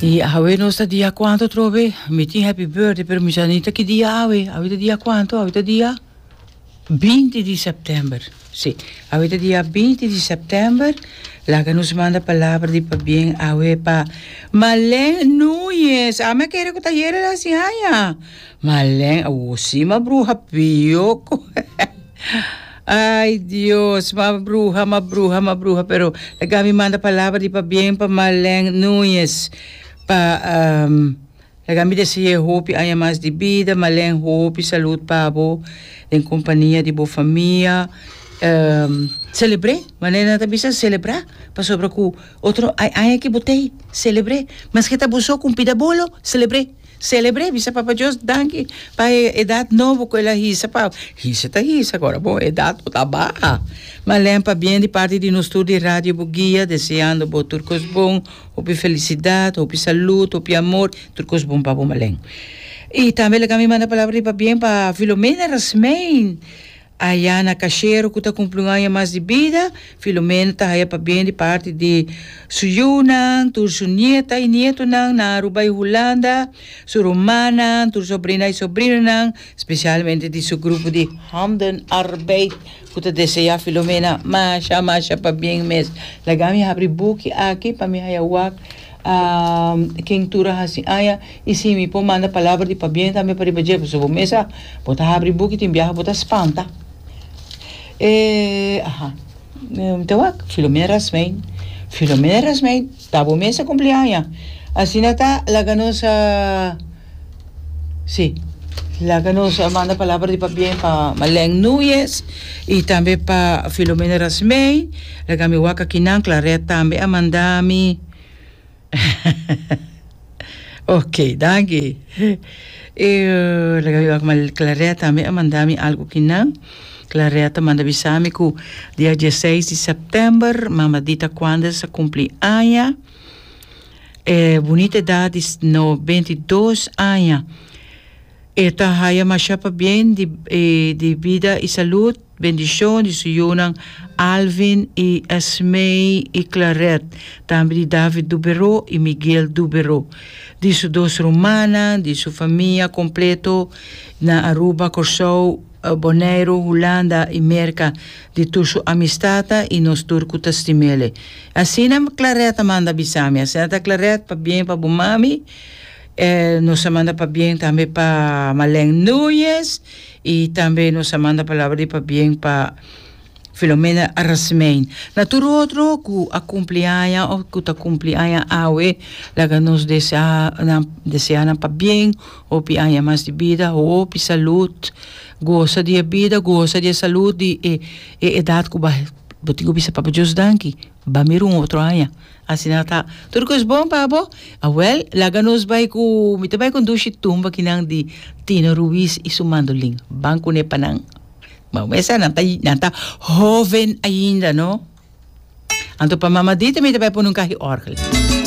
Di awe nos ta dia cuanto trobe? Mi tin happy birthday, pero mi sa ni ta ki dia awe. Awe ta dia cuanto? Awe ta dia binti di september. Sí, awe ta dia binti di september. Laga nos manda palabra di pabien awe pa Malén Núñez. Ami a kere cu ta yere den sin haña. Malén, awor sí, ma bruha pio. Ai Dios ma bruha ma bruha ma bruha pero la gami manda palabra di pabien pa Marlen Nuñez pa um, la gami deseé hopi aña mas di bida Marlen hopi salud pabo den compania di bo famia um celebré manera nan ta bisa celebra pasobra cu otro ai aña ki bo tey celebré maske ta bo so cu un pida bolo celebré. Celebr'é, bisa Papa Dios danki pa e edat nobo ku el a hisa pa hisa ta hisa kora bo edat bo ta baha malen pabien di parti di nos tur di Radio Bugia deseando bo tur kos bon hopi felisidat hopi salut hopi amor tur kos bon pa bo malen i tambe laga mi manda palabra di pabien pa Filomena Rasmijn. Aya na Cachero cu ta cumpli un aña mas di bida, Filomena ta haya pabien di parti di su yiunan, tur su nieta y nietonan na Aruba y Hulanda, su rumannan, tur sobrina y sobrinonan, specialmente di su grupo di Handen Arbeid cu ta desea Filomena masha masha pabien mes. Laga mi habri buki aki pa mi haya wak ken tur a haci aña. I si mi por manda palabra di pabien tambe pa riba dje, pasobra bo mesa bo ta habri buki tin biaha bo ta spanta. E, aha, mi ta wak, Filomena Rasmein. Filomena Rasmein, ta bo mesa cumpleaña. Asina ta, laga nos, si, laga nos manda palabra di pabien pa Marlène Nuyes i tambe pa Filomena Rasmein. Laga mi wak aki nan, Claret tambe a manda mi. ok, danki. E laga mi wak mal Claretta ami a manda mi algo kinan. Claretta manda bisa mi ku dia 16 di september mama di ta kuanda sa kumpli aña. E bunita edat di no 22 aña. E ta haya masha pabien di e di bida i salud. Bendicion di su yunan Alvin y Esmee y Clarette, tambe di David Dubero y Miguel Dubero, di su dos rumannan, di su famia completo na Aruba, Corsou, Boneiro, Hulanda y Merca, di tur su amistata y nos tur cu ta stimele. Asina Clarette a manda bisami, Asina ta Clarette, pabien pa bo mami. Nos a manda pabien tambe pa Malène Núñez. I tambe nos a manda palabra di pabien pa Filomena Arasmijn. Na tur otro ku a kumpli aña of ku ta kumpli aña awe, laga nos desea nan desea nan pabien, hopi aña mas di bida, hopi salud, gosa di e bida, gosa di e salud di e e edat ku bo tin ku bisa Papa Dios danki, ba mira un otro aña. Asina ta. Tur kos bon pa bo? Awèl, laga nos bai ku, mi ta bai kondushi tumba kinan di Tino Ruiz i su mandolin. Ban kuné pa nan. Bo mester nan ta, nan ta hóven ainda, no? Anto pa mamadita mi ta bai pone un kahi òrgel.